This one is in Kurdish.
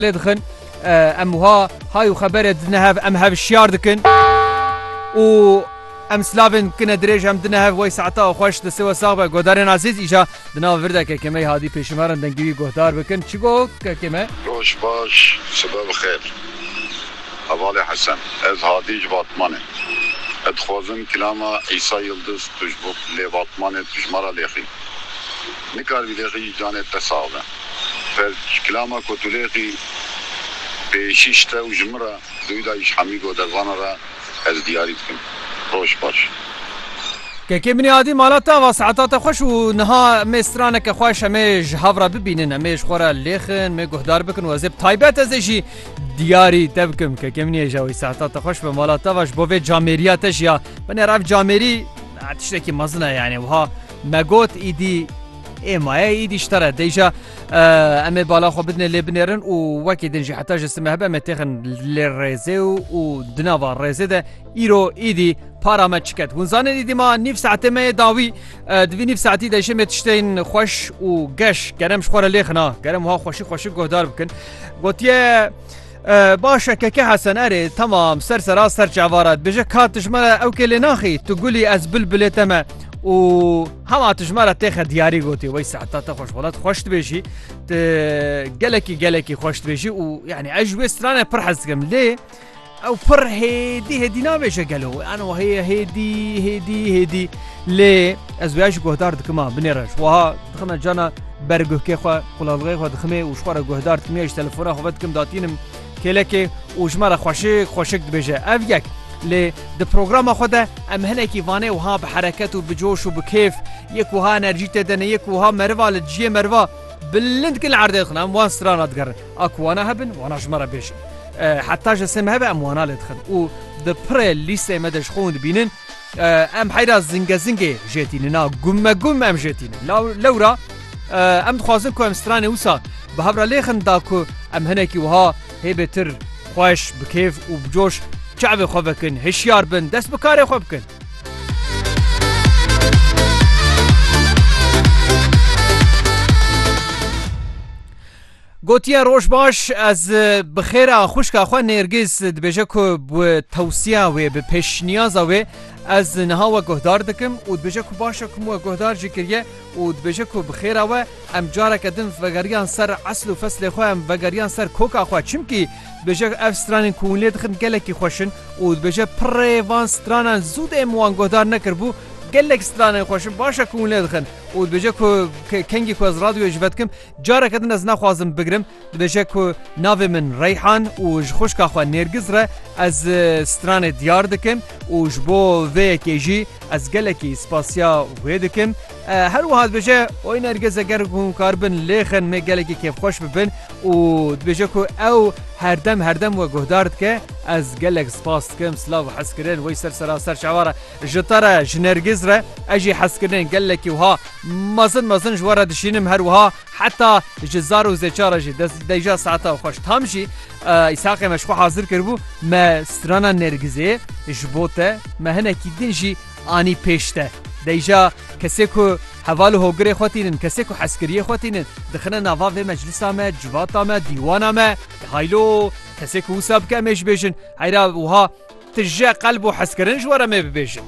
lê dixin em wiha hay û xebere dine hev em hevşiyar dikin û em slavên kine dirêj em dine hev wey saeta xweş di siwe sax be godarên azîz îja di nav virde kekê me hadî pêşimeran dengîwî guhdar bikin çi got kekê me Roj baş sibe bi xêr. Hevalê Hesen. Ez hadî ji Batmanê. Ez dixwazim kilama Îsa Yildiz tu ji bo lê Batmanê tu ji me ra lêxî. Nikaribî lêxî îcanê te sax be. Ber klama ku Tulêqî bê şîş te û ji min re dûyî da îş hemî go dervana re ez diyarî dikim. Roj baş. Kekê minî adî mala te ava saeta te xweş û niha mê straneke xweş em ê ji hev re bibînin em ê ji xwe re lêxin mê guhdar bikin û ez ê bi taybet ez ê jî diyarî te bikim kekê minî êja wî saeta te xweş be mala te va ji bo vê camêrîya te jî ya binêr ev camêrî tiştekî mezin e yanî wiha me got îdî Ê maye îdî ji te re deyja em ê bala xwe bidinê lê binêrin û wekî din jî heta ji sime hebe em ê têxin lê rêzê û û di nava rêzê de îro îdî para me çiket hûn zanên îdî ma nîv saetê me yê dawî di vî nîv saetî de jê me tiştên xweş û geş gerem ji xwe re lêxina gerem wiha xweşî xweşî guhdar bikin gotiye Baş e keke Hesen erê temam ser sera ser çavara dibêje ka tijmere ew kê lê naxî tu gulî ez bilbilê te me û hema tijmere têxe diyarî gotî wey sehta te xweş welat xweş dibêjî tu gelekî gelekî xweş dibêjî û yanî ez ji wê stranê pir hez dikim lê ew pir hêdî hêdî nabêje gelo an heye hêdî hêdî hêdî lê ez wê ji guhdar dikima binêre ji wiha dixime cana Ber guhkê xwe qulalixê xwe diximê û ji xwe re guhdar timiya ji telefona xwe ve dikim datînim kêlekê û ji me re xweşik xweşik dibêje. Ev yek. Lê di programa xwe de em hinekî vanê wiha bi hereket û bi coş û bi kêf yek wiha enerjî tê de ne yek wiha meriva li dijiyê meriva bilind kin li erdê dixin em wan strana digerin a ku wana hebin wana ji me re bêjin. Heta ji sê me hebe em wana lê dixin û di pirê lîsteyê me de ji xwe hûn dibînin. Em heyra zingezingê jê tînin a gummegum em jê tînin. Lewra em dixwazin ku em stranê wisa bi hevra lêxin da ku em hinekî wiha hêbêtir xweş bi kêf û bi coş çavê xwe vekin, hişyar bin, dest bi karê xwe bikin. Gotiye roj baş ez bi xêr a xwişka xwe Nêrgîz dibêje ku bi tewsiya wê bi pêşniyaza wê ez niha we guhdar dikim û dibêje ku baş e ku min we guhdar jî kiriye û dibêje ku bi xêra we em careke din vegeriyan ser esl û feslê xwe em vegeriyan ser koka xwe çimkî dibêje ev stranên ku hûn lê dixin gelekî xweş in û dibêje pirrê van stranan zû dê min wan guhdar nekiribû gelek stranên xweş in baş e ku hûn lê dixin û dibêje ku kengî ku ez radyoyê ji ve dikim Careke din ez naxwazim bigirim dibêje ku navê min Reyhan û ji xwişka xwe Nêrgiz re ez stranê diyar dikim û ji bo vê yekê jî ez gelekî spasiya wê dikim. Her wiha dibêje oy Nergiz eger hûn karibin lêxin mê gelekî kêfxweş bibin û dibêje ku ew herdem herdem we guhdar dike ez gelek spas dikim silav û hezkirin wey ser seraser şeva re. Ji te re, ji Nergîz re ez jî hez kirinên gelekî wiha mezin mezin ji we re dişînim her wiha heta ji zar û zêça re jî dest deyja saeta xweş tam jî Îshaqê me ji xwe hazir kiribû me strana Nergîzê ji bo te me hinekî din jî anî pêş te deyja kesê ku heval û hogirê xwe tînin kesê ku hezkiriyê xwe tînin dixine nava vê meclisa me civata me dîwana me haylo kesê ku wisa bike em ê ji bêjin Heyra wiha tije qelb û hezkirin ji we re mê bibêjin.